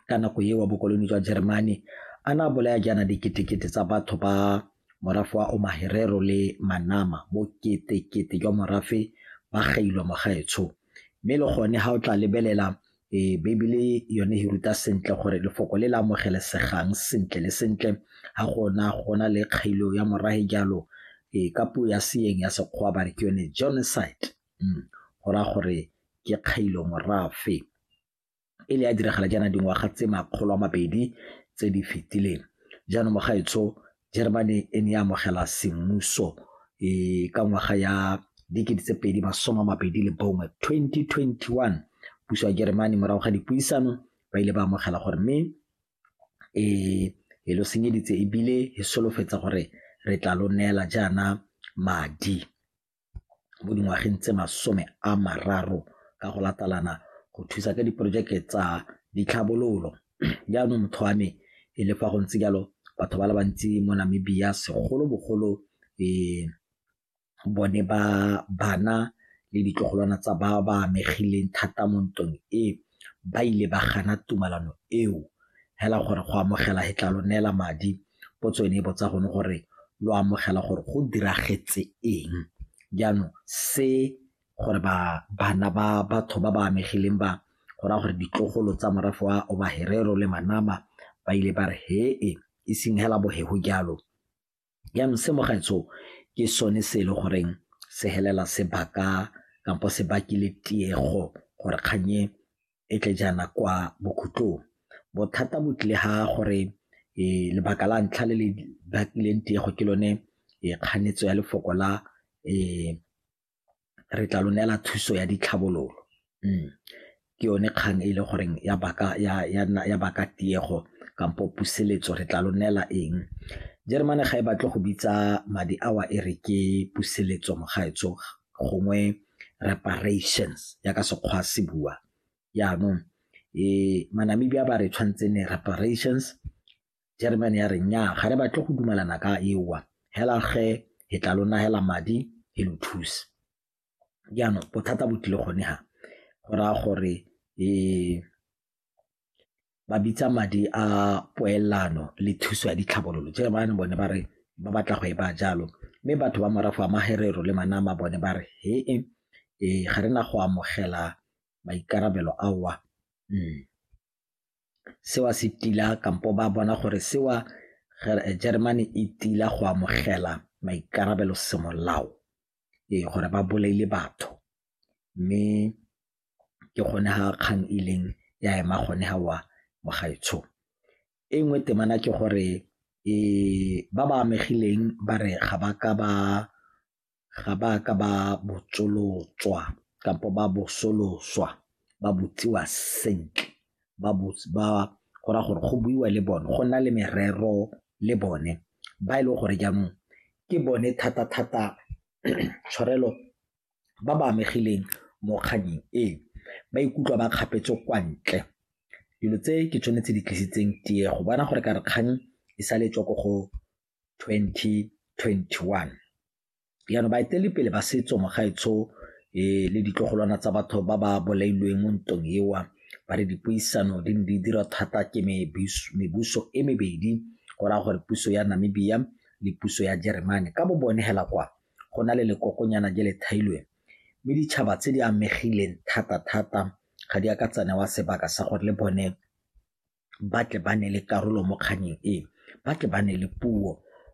ka nako eo wa bokoloni jwa Jeremane a na bolaya jaana diketekete tsa batho ba morafe wa Omaherero le Manama bo ketekete jwa morafe ba gailwa mogaetsho mme le gone ga o tla lebelela e Bibele yone e ruta sentle gore lefoko le le amogelesegang sentle le sentle ga gona gona le kgailo ya morahe jalo e ka puo ya seeng ya sekgowa ba re ke yone genocide go raya gore ke kgailo morafe e le ya diragala jaana dingwaga tse makgolo a mabedi tse di fetileng. Jaanong mogaetsho Germany e ne ya amogela semmuso um ka ngwaga ya dikete tse pedi masome a mabedi le bongwe twenty twenty one puso ya Germany morago ga dipuisano ba ile ba amogela gore mme um e lo senyeditse ebile e solofetsa gore re tla lo neela jaana madi. mo dingwageng tse masome a mararo ka go latalana go thusa ka diporojeke tsa ditlhabololo. Jaanong motho wa me e le fa go ntse jalo batho ba le bantsi mo Namibia segolobogolo bone ba bana le ditlogolwana tsa ba ba amegileng thata mo ntweng e, ba ile ba gana tumalano eo hela gore go amogela he tla lo neela madi potso e ne e botsa gone gore lo amogela gore go diragetse eng jaanong se gore ba bana ba batho ba ba amegileng ba go raya gore ditlogolo tsa morafe wa obaherero le manama ba ile ba re hee e seng hela bohego jalo jaanong se mo gaetsho ke sone se e le goreng se helela sebaka kampo se bakile tiego gore kgang e e tle jaana kwa bokhutlong bothata bo tlile ga gore um lebaka la ntlha le le bakileng tiego ke lone um kganetso ya lefoko la um re tla lo neela thuso ya ditlhabololo. Ke yone kgang e le goreng ya baka tiego kampo puseletso re tla lo neela eng. Jeremane ga e batle go bitsa madi a o a e re ke puseletso mo gaetsho gongwe reparations jaaka Sekgowa se bua jaanong. Ma-Namibia ba re tshwanetse e nne reparations Jeremane ya re nnyaa ga re batle go dumalana ka eowa hela ge he tla lo nagela madi he lo thuse jaanong bothata bo tlile gone ga go raya gore um ba bitsa madi a poelano le thuso ya ditlhabololo jeremane bone ba re ba batla go e ba jalo mme batho ba morago a magerero le manama bone ba re he e ee ga re na go amogela maikarabelo aowa um seo se tila kampo ba bona gore seo Jeremane e tila go amogela maikarabelo semolao ee gore ba bolaile batho mme ke gone ga kgang e leng ya ema gone ga wa mogaetsho e nngwe temana ke gore e ba ba amegileng ba re ga ba ka ba ga ba ka ba botsolotswa kampo ba bosoloswa ba botsiwa sentle ba go raya gore go buiwa le bone go nna le merero le bone ba e leng gore jaanong ke bone thata-thata tshwarelo ba ba amegileng mo kgannyeng e, ba ikutlwa ba kgapetswe kwa ntle. Dilo tse ke tsone tse di tlisitseng tiego, bona gore ka re kgang e sale e tswa ko go 2021. Jaanong baeteledipele ba setso mogaetsho um eh, le ditlogolwana tsa batho ba ba bolailweng mo ntong ewa ba re dipuisano di ne di dira thata ke mebuso e mebedi go raya gore puso ya Namibia le puso ya Jeremane ka bo bone hela kwa go na le lekokonyana je le thailweng mme ditšhaba tse di amegileng thata-thata ga di a ka tsanewa sebaka sa gore le bone ba tle ba ne le karolo mo kganyeng e ba tle ba ne le puo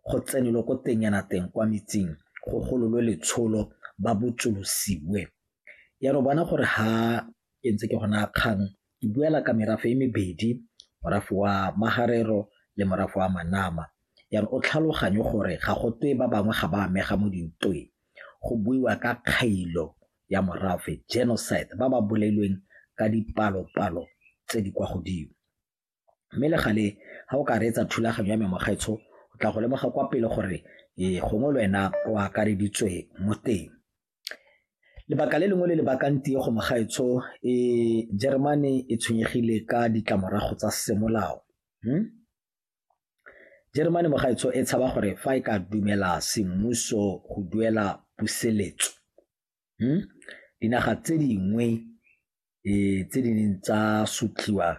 go tsenelwe ko teng yana teng kwa metseng go gololwe letsholo ba botsolosiwe ya re bona gore ha ke ntse ke gona kgang ke buela ka merafe e mebedi morafe wa magarero le morafe wa manama ya re o tlhaloganye gore ga go twe ba bangwe ga ba amega mo dintweng go buiwa ka kgailo ya morafe, genocide, ba ba bolailweng ka dipalo-palo tse di kwa godimo. Mme le gale ga o ka reetsa thulaganyo ya me mogaetsho o tla go lemoga kwa pele gore ee gongwe le wena o akareditswe mo teng. Lebaka le lengwe le le bakang tiego mogaetsho e Jeremane e tshwenyegile ka ditlamorago tsa semolao. Jeremane mogaetsho e tshaba gore fa e ka dumela semmuso go duela puseletso hmm? dinaga tse dingwe e tse di neng tsa sotliwa